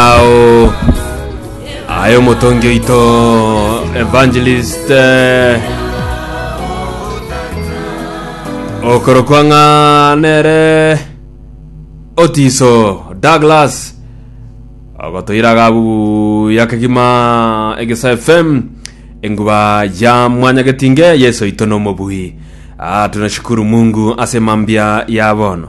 Ao aye omotongi oito evangelist eh, okorokwa ng'a nere otiso douglas agotoiraga abu yakegima egesa fm enguba ya mwanya getinge yesu oito nomobui Ah, tunashukuru mungu ase mambia ya bono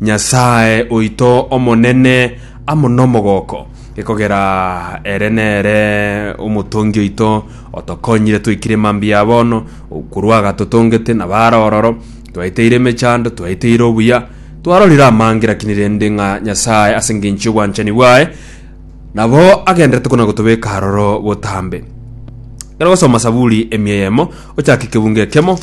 Nyasae oito omonene amo nomogooko, ekogera ere nere omotongi oito, otokonyire twaikire mambia ya bono, korwa agatotongete na baare ororo, twaeteire emechando, twaeteire obuya, twarorire amange, lakini rende ng'a Nyasae ase engencho y'obwanchani bwaye nabo agenderete kona gotobeka aroro botambe. Ekero ogosoma Saburi emia eyemo, ochake kebungo ekemo,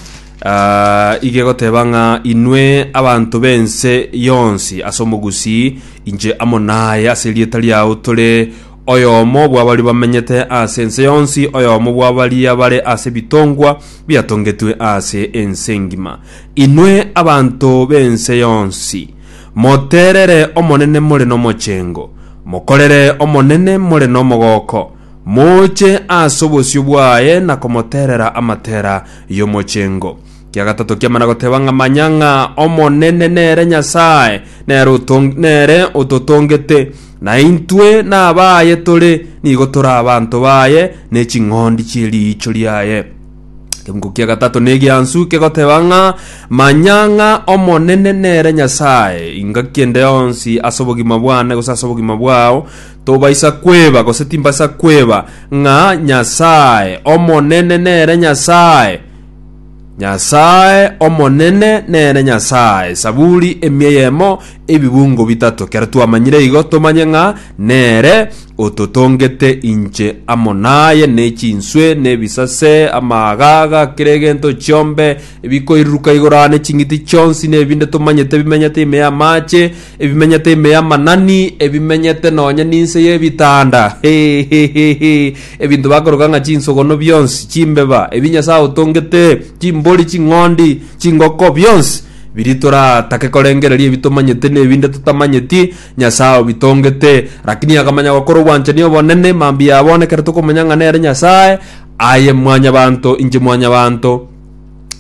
Aa, iga egoteba ng'a inwe abanto b'ense yonsi ase omogusii, inche amo naye ase erieta riao tore oyomo bw'abaria bamenyete ase ense yonsi, oyomo bw'abaria bare ase ebitongwa biatongetwe ase ense engima. Inwe abanto b'ense yonsi, moterere Omonene more nomochengo, mokorere Omonene more nomogooko, Moche ase obosio bwaye na komoterera amatera y'omochengo. Kia gatato kiamana goteba ng'a manya ng'a Omonene nere Nyasae, nere, otong, nere ototongete, na intwe nabaye tore, nigo tore abanto baye, ne ching'ondi chie riicho riaye. Ekemuko kia gatato negiansu kegoteba ng'a manya ng'a Omonene nere Nyasae, ingaki ende yonsi ase obogima bwane gose ase obogima bwao, Tobaisa kweba, gose timbaisa kweba, ng'a Nyasae Omonene nere Nyasae, Nyasae Omonene nere Nyasae. Saburi emia eyemo, ebibungo bitato. Kero twamanyire igo, tomanye ng'a nere ototongete inche amo naye, ne chinswe, ne ebisase, amaagaga, kera egento chiombe, ebikoiriruka igoro aa, ne ching'iti chionsi, ne ebinde tomanyete bimenyete ime y'amaache, Ebimenyete ime y'amanani, ebimenyete nonya ninse y'ebitanda, hehehehe, ebinto bakoroka ng'a chinsogono bionsi, chimbeba, ebi Nyasae otongete, chimbori, ching'ondi, chingoko, bionsi biri toratake korengereria ebi tomanyete nebinde totamanyeti, Nyasae obitongete. Lakini akamanya gokora obwanchani obonene, mambia abonekerete okomanya ng'a nere Nyasae, aye mwanyabanto, inche mwanyabanto.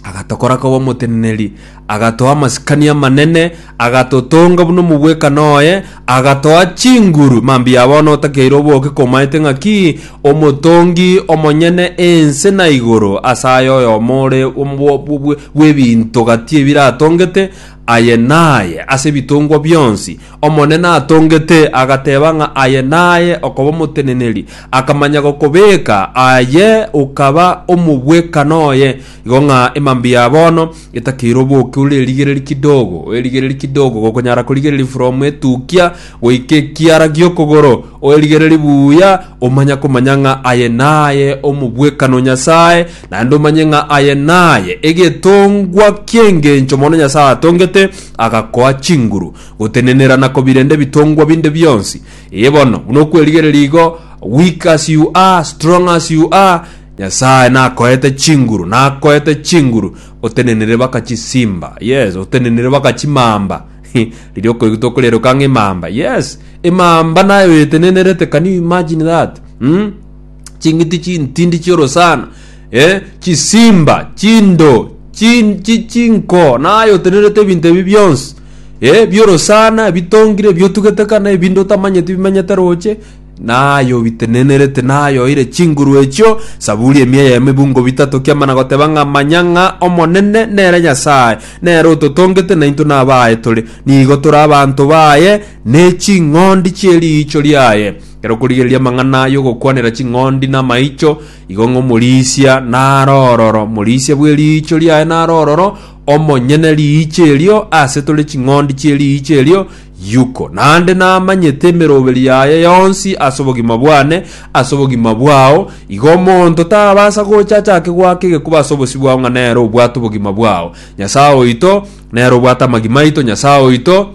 agatokora koba omoteneneri, agatoa amasikani amanene, agatotonga buna omobwekano oye, agatoa chinguru. Mambia bono otakeire oboke komaete ng'aki omotongi omonyene ense na igoro, ase aye oyomo ore omo- bw- bw- bw'ebinto gati ebiratongete, aye naye ase ebitongwa bionsi, Omonene atongete, agateba ng'a aye naye okoba omoteneneri, akamanya gokobeka, aye okaba omobwekano oye, igo ng'a emambia ya bono etakeire oboke ore erigereri kidogo, erigereri kidogo gokonyara korigereria from etukia goika ekiara gi'okogoro, oerigereri buya, omanya komanya ng'a aye naye omobwekano Nyasae, naende omanye ng'a aye naye egetongwa ki'engencho mono Nyasae atongete, agakoa chinguru. Gotenenera na kobirende ebitongwa binde bionsi. Ee bono, buna okwerigereria igo, weak as you are, strong as you are, Nyasae nakoete chinguru, nakoete chinguru, otenenire baka chisimba, yes, otenenire baka chimamba, riria okoigutwa okorieroka ng'a emamba, yes, emamba naye oyetenenerete, can you imagine that? Umm. ching'iti chintindi chi'orosana eh, chisimba chindo chin- chi- chinko naye otenerete ebinto ebi bionsi eh, bi'orosana ebitongire ebiotugete kana ebinde otamanyeti bimenyete roche naye obitenenerete naye oire chinguru echio saburi emia ya emebungo bitato kiamana goteba ng'a manya ng'a omonene nere nyasae nere ototongete naintwe nabaye tore nigo tore abanto baye ne ching'ondi chi'eriicho riaye Ekero okorigereria amang'ana y'ogokwanera ching'ondi namaicho, igo ng'a omorisia naro ororo, omorisia bw'eriicho riaye naro ororo, omonyene riicho erio, aase tore ching'ondi chi'eriicho erio, Yuko. Naende namanyete emeroberi yaye yonsi ase obogima bwane, ase obogima bwao, igo omonto tabasa gocha achake goaka egekuba ase obosio bwao ng'a nere obwate obogima bwao. Nyasae oito, nere obwate amagima aito, Nyasae oito,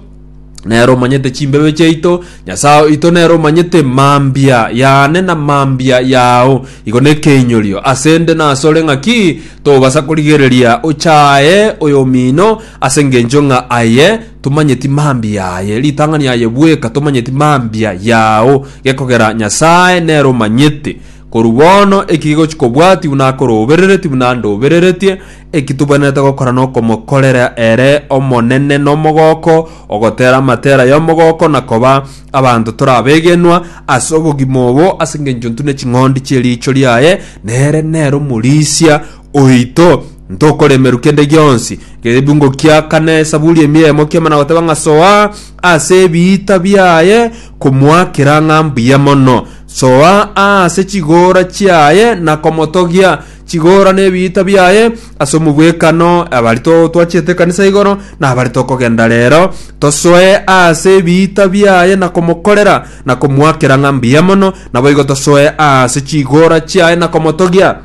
nere omanyete chimbebe chiaito nyasae oito nere omanyete mambia yane na mambia yao igo nekeinyorio ase nde na asore ng'aki tobasa korigereria ochaye oyomino ase ngencho ng'a aye tomanyeti mambia yaye ritang'ani yaye bweka tomanyeti mambia yao gekogera nyasae nere omanyete korwa bono ekigochi kobwati buna akorobereretie buna ndobereretie Eki tobwenerete gokora nokomokorera ere Omonene nomogooko, ogotera amatera y'omogooko na koba abanto tore abegenwa ase obogima obo ase engencho intwe ne ching'ondi chi'eriicho riaye, nere nere omorisia oito. Ntokoremerwa kende gionsi. Egebungo kia kane, Esaburi emia eyemo kiamo na goteba ng'a Soa ase ebiita biaye komoakera ng'a mbuya mono, soa aase chigoora chiaye na komotogia, Chigora nebiita biaye ase omogwekano abari totwachete ekanisa igoro na abari tokogenda rero, tosoe ase ebiita biaye na komokorera na komoakera ng'a mbuya mono, naboigo tosoe ase chigora chiaye na komotogia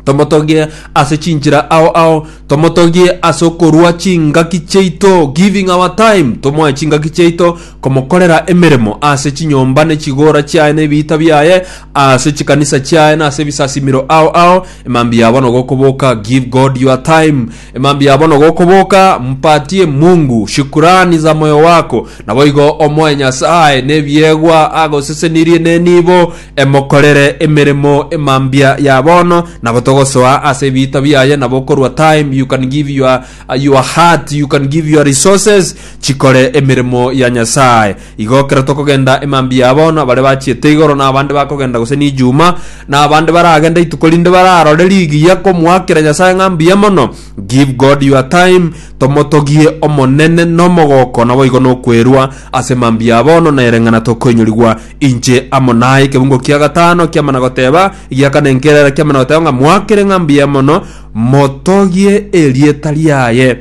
tomotogie ase chinchera ao ao tomotogie ase okorua chingaki chiaito giving our time tomoe chingaki chiaito komokorera emeremo ase chinyomba ne chigoora chiaye ne ebiita biaye, ase chikanisa chiaye na ase ebisasimero ao ao, emambia bono gokoboka, give God your time, emambia bono gokoboka, mpatie Mungu shukurani za moyo wako, naboigo omoe Nyasae nebiegwa agosesenirie ne nibo emokorere emeremo emambia ya bono, nabo togosoa ase ebiita biaye nabo okorwa time you can give your A your heart you can give your resources chikore emeremo ya Nyasaye. Igo kero tokogenda emambia ya bono bare bachiete igoro na abande bakogenda gose nijuma na abande baragende ituko rinde bararore rigiya komoakera Nyasaye ng'a mbuya mono. Give God your time tomotogie Omonene nomogoko naboigo nokwerwa ase emambia ya bono na ereng'ana tokoinyorigwa inche amo naye. Ekebungo kia gatano kiamana goteba egiakana enkerera kiamana goteba ng'a moakere ng'a mbuya mono motogie erieta riaye.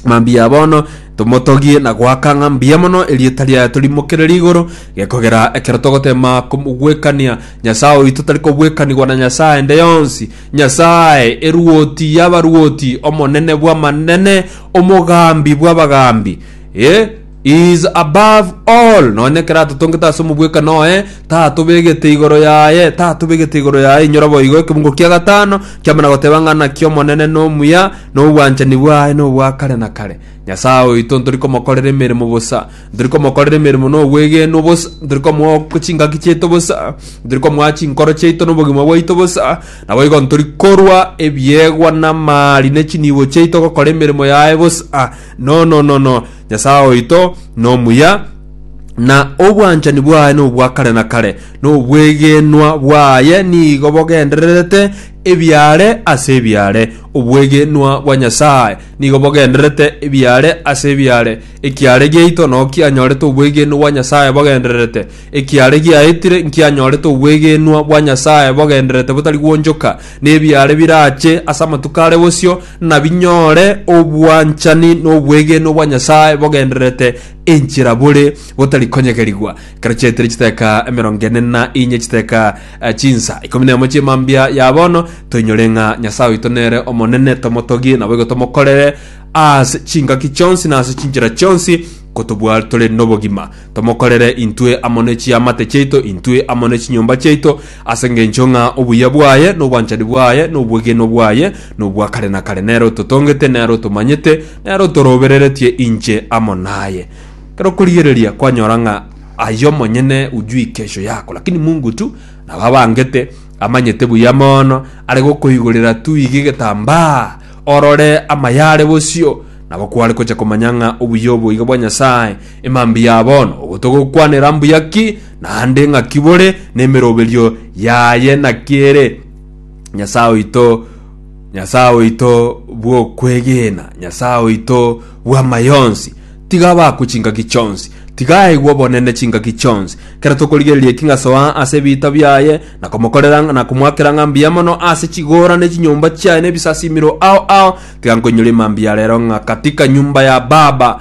Mambia bono tomotogie na goaka ng'a mbuya mono erieta riaye torimokere igoro gekogera ekero togotema gwekania nyasaye oito tari kobwekanigwa na nyasaye ende yonsi nyasaye eruoti yabaruoti omonene bw'amanene omogambi bw'abagambi e He is above all, nonya ekero atotongete ase omobwekano oye, tatobegete igoro yaye, tatobegete igoro yaye. Inyora boigo ekebungo kia gatano kiamana goteba ng'a naki Omonene nomuya, na obwanchani bwaye nobwa kare na kare. Nyasae oito ntori komokorera emeremo bosa, ntori komokorera emeremo na obwegenwa bosa, ntori komoa chingaki chiaito bosa, ntori komoa chinkoro chiaito na obogima bwaito bosa. Naboigo ntori korwa ebiegwa na amaari ne chinibo chiaito gokora emeremo yaye bosa. No, no, no, no. Nyasae oito nomuya, na obwanchani bwaye nobwa kare na kare, na obwegenwa bwaye nigo bogendererete ebiaare ase ebiaare. Obwegenwa bwa Nyasae nigo bogendererete ebiaare ase ebiaare. Ekiaare giaito nao kianyorete obwegenwa bwa Nyasae bogendererete. Ekiaare giaetire nkianyorete obwegenwa bwa Nyasae bogendererete botari gwonchoka, na ebiaare birache ase amatuko are bosio, nabinyore obwanchani n'obwegenwa bwa Nyasae bogendererete enchera bore botari konyegerigwa. Ekero chiaetire chiteka emerongo ene na inye chiteka eh, chinsa ikomi nemo chi'emambia ya bono, toinyore ng'a Nyasae oito nere omonene, tomotogie, naboigo tomokorere ase chingaki chionsi na ase chinchera chionsi, kotobua tore nobogima. Tomokorere intwe amo ne chiamate chiaito, intwe amo ne chinyomba chiaito, ase engencho ng'a obuya bwaye, na obwanchani bwaye, na obwegenwa bwaye nobwa kare na kare. Nere ototongete, nere otomanyete, nere otorobereretie inche amo naye. Ekero okorigereria kwanyora ng'a aye omonyene ujui kesho yako, lakini Mungu tu nabo abangete, amanyete buya mono, are gokoigorera tu iga egetambaa, orore amayare bosio, nabo kware gocha komanya ng'a obuya obo iga bwa Nyasae, Emambia ya bono, obo togokwanera mbuya ki, naende ng'aki bore, nemeroberio yaye naki ere? Nyasae oito, Nyasae oito bw'okwegena, Nyasae oito bw'amayonsi, tiga abakwe chingaki chionsi, tiga aigwe obonene chingaki chionsi. Kera tokorigereria eki ng'asoa ase ebiita biaye, na komokorera na komoakera ng'a mbuya mono ase chigoora ne chinyomba chiaye ne ebisasimero ao ao, tiga nkoinyore emambia ya rero ng'a katika nyumba ya Baba